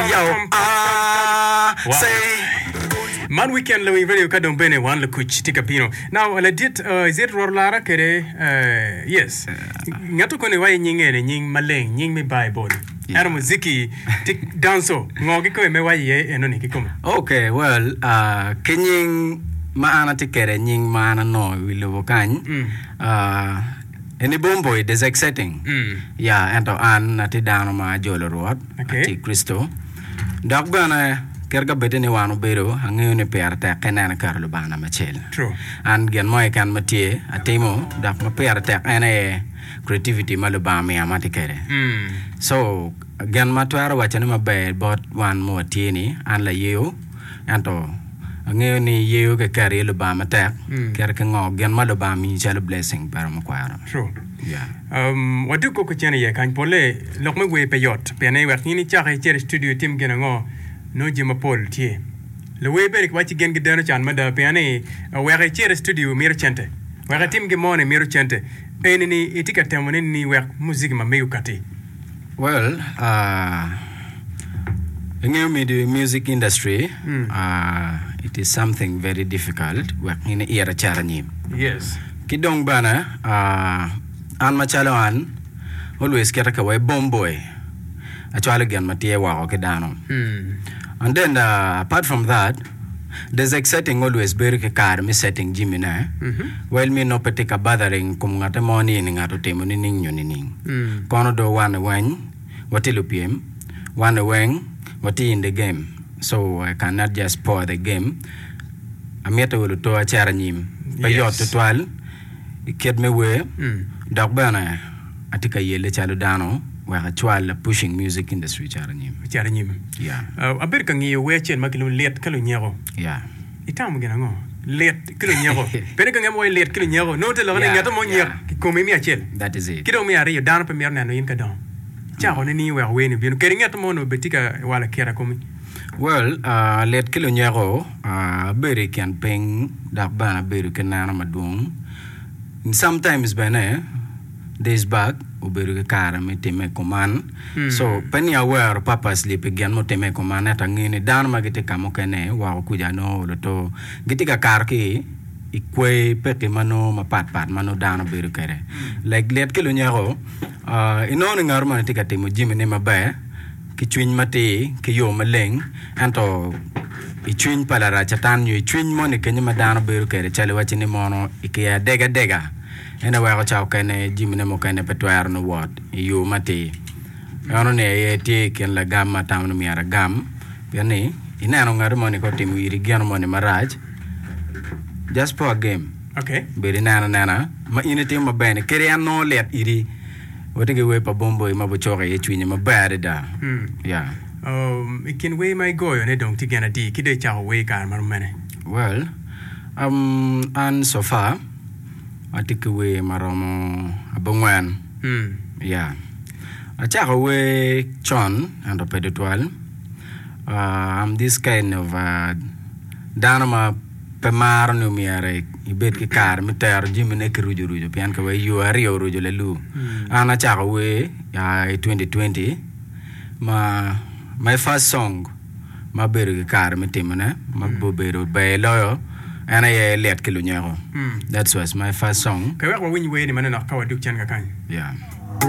Yow aah say Man weekend Lawing Radio ka dong bene wan lukuc tye ka bino. Now ladit uh, is it Rwot Lara kede uh, yes. Ngat okone iwaye nying ene nying maleng, nying me Bible. Yeah. Eno muziki ti danso ngo ki kome me waye iye enoni ki kome. Okay, well, uh, ki nying ma an atye kede nying ma an anongo i wi lobo kany, Mm. uh, En ibombo i desek setting? Mm. Ya, ento an atye dano ma ajolo Rwot, Okay. atye Kricito. Dok bene, kit ka bed ni wan obedo, angeyo ni pire tek ka ineno iketo Lubanga namba acel. True. An gin mo keken ma tye, atimo, dok ma pire tek en aye creativity ma Lubanga omiya ma atye kwede. Mm. So, gin ma atwero wacone maber bot wan ma watye ni, an layeyo, Ento angeyo ni yeyo ki keri i Lubanga matek mm. keri ki ngo gin ma Lubanga miyi calo blessing pero me kwaro. True. Yeah. Um, watye koko cen iye kany pole lok me wer pe yot pien wek in icak icer i studio itim gin ango no je mapol tye luwer bene kiwaci gen gi deno can mada pien ni wek icer i studio miro cente wek itim gi mone miro cente eni ni itye ka temo ni ni wek muziki ma mego kati Well uh, ingeyo midi music industry uh, it is something very difficult wek in iyer acer anyim. Yes. Ki dong bene uh, an macalo an always keta ka wai bom boy acwalo gin ma tye woko ki dano. And then uh, apart from that Desek setting always bedo ki kare me setting jimmi ne, well me nongo pe tye ka bothering kom ngate mo ni eni ngat otimo nining nyo nining. Kono do one weny watye lupyem, one weng watye in the game so I can not just spoil the game. Amitte wa luto acit anyim pe yot Yes. tutwal ikit me wer dok bene Atye ka yelle calo dano wek acwal pushing music industry caro anyim. Caro anyim. Yeah. Abedo ka ngiyo wer acel ma kilwongo lit ka lunyeko. Yeah. Itamo gin ango? Lit ki lunyeko. Pene ka ngemo wayo lit ki lunyeko. Nongo te loko ni ngete mo onyek ki kome imiyo acel. That is it. Ki dong me ariyo dano pe mito neno in ka dongo. Cako ne ni iweko wer ni obino. Keri ngete mo nongo be tye ka walo kira komi. Well, uh, lit ki lunyeko, uh, abedo i kin piny dok bene abedo ki neno madwong. Sometimes bene this bag obedo ki kare me time kuman mm. so pe ni awero purposely pi gin mutime kuman ento angeyo ni dano ma gitye ka mukene woko kuja nongo olo to gitye ka kato ki i kwee peki ma nongo mapat pat ma nongo dano bedo kwede mm. like lit ki lunyeko uh, inongo ni ngato mani tye ka timo jimine maber ki cwiny matir, ki yo maleng, ento i cwiny pa larac Catan nyo i cwiny moni kenyo ma dano bedo kwede calo iwacci ni mono i kiya adega adega, en aye weko ca okene jamine mukene pe twero ni wot i yo matir. Eno ni aye tye i kin lagam ma atamo ni myero agam pien ni ineno ngati moni ka otimo iri gino moni marac, just po agem, bedo ineno anena ma in itimo maber-ni kadi en nongo lit idi. Wati ki wer pa Bomboi ma bucoko iye cwinyi maber adada. Hmm. Yeah. Um, I kin wer ma igoyo ne dong tye gin adi? Ki dong icako wer i kare ma rom mene? Well, um, an so far atye ki wer ma romo abongwen. Hmm. Yeah. Acako wer con ento pe tutwal. Uh, I'm this kind of uh, dano ma Pe maro ni omyero ibed ki kare me tero jamine ki rucu rucu pien ka wai yo aryo orucu lalu. An acako wer ya i 2020 ma my first song ma abedo ki kare me timone ma obedo ber loyo en aye Lyet ki Lunyeko. That was my first song. Pe wek wawiny wer-ni manonok ka wadug cen kakany. Yeah.